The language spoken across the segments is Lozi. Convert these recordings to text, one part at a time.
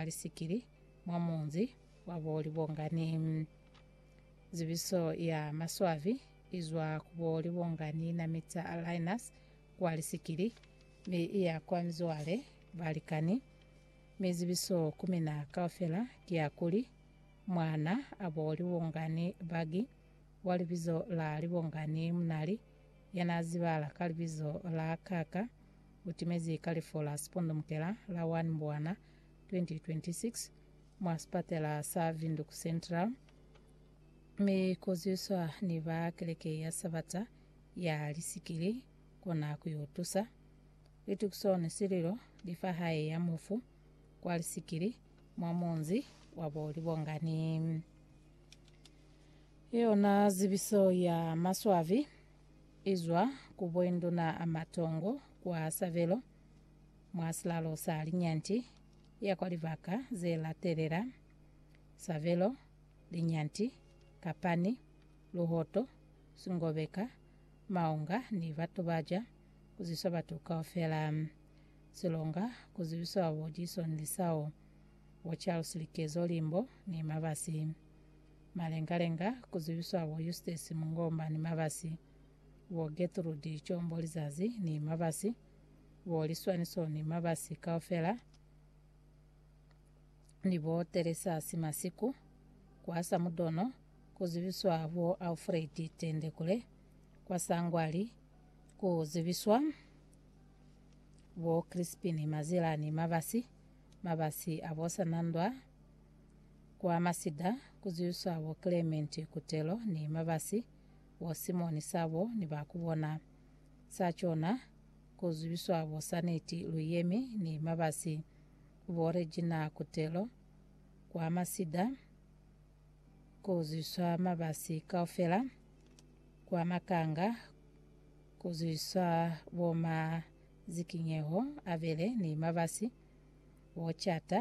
mwa lisikili mwa munzi wa bo Libongani. Zibiso ya maswabi izwa ku bo Libongani na Mita Alliance kwa lisikili mi iya kwa mizwale balikani, mi zibiso ku mina kaufela ki ya kuli, mwana a bo Libongani Bagi wa libizo la Libongani Munali, ya na zibala ka libizo la Kaka, u timezi kalifo la sipundumukela la 1 Mbwana 2026 mwa sipatela sa Windhoek Central, mi ku zwiswa ni ba keleke ya Sabata ya lisikili kona ku yo tusa. Litukiso ni sililo li fa hae ya mufu kwa lisikili mwa munzi wa bo Libongani. Yona zibiso ya maswabi. Izwa ku boinduna a matongo kwa sabelo mwa silalo sa linyanti ya kwa libaka ze latelela, sabelo, linyanti, kapani, luhoto, singobeka, maunga ni batu ba ja ku ziswa batu kaufela. Silonga ku zibiswa babo Jason Lisao, Bo Charles Likezo Limbo ni Mabasi. Malengalenga, ku zibiswa bo Eustace Mungomba ni Mabasi, bo Getrude Combo Lizazi ni Mabasi, bo Liswaniso ni Mabasi kaufela, ni bo Teresa Simasiku, kwa Samudono, ku zibiswa bo Alfred Tendekule, kwa Sangwali, ku zibiswa bo Crispin Mazila ni Mabasi, Mabasi a bo Sanandwa, Kwa masida ku zwiswa bo Clement Kutelo ni Mabasi, bo Simon Sabo ni ba ku bona. Sa cona, ku zwiswa bo Saneti Luyemi ni Mabasi, bo Regina Kutelo. Kwa masida ku zwiswa Mabasi kaufela. Kwa makanga ku zwiswa bo Mazikinyeho Abele ni Mabasi, bo Chata.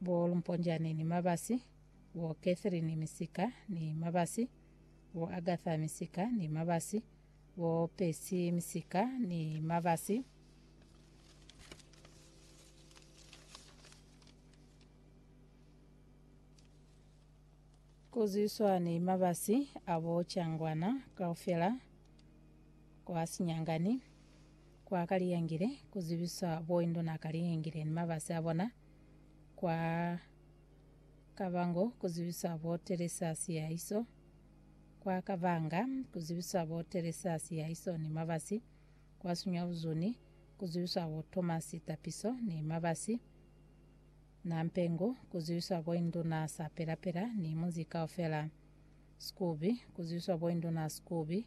Bo Lumponjane ni Mabasi, bo Catherine Misika ni Mabasi, bo Agatha Misika ni Mabasi, bo Percy Misika ni Mabasi. Kuzwiswa ni mabasi abo Changwana kaufela kwa Sinyangani. Kwa Kaliyengile, ku zibiswa bo Induna Kaliyengile ni mabasi a bona. Kwa Kabango, ku zibiswa bo Teresa Siyahiso. Kwa Kabanga, ku zibiswa bo Teresa Siyahiso ni mabasi. Kwa Sunyabuzuni, ku zibiswa bo Thomas Tapiso ni mabasi. Nampengu, ku zibiswa bo Induna Sapelapela ni munzi kaufela. Skubi, ku zibiswa bo Induna Skubi.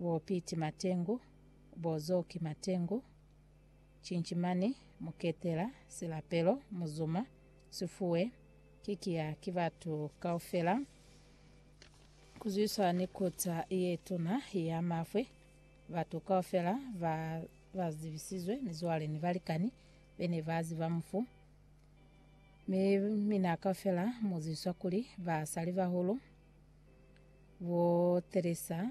Bo Piti Matengu, bo Zoki Matengu, Cinchimani, Muketela, Silapelo, Muzuma, Sifuwe, ki kiya ki batu kaufela kuzwiswa ni kota ye tuna ya mafwe, batu kaufela ba ba zibisizwe, mizwale ni balikani bene ba ziba mufu. Mi mina kaufela muzizwa kuli basalibahulu, bo Teresa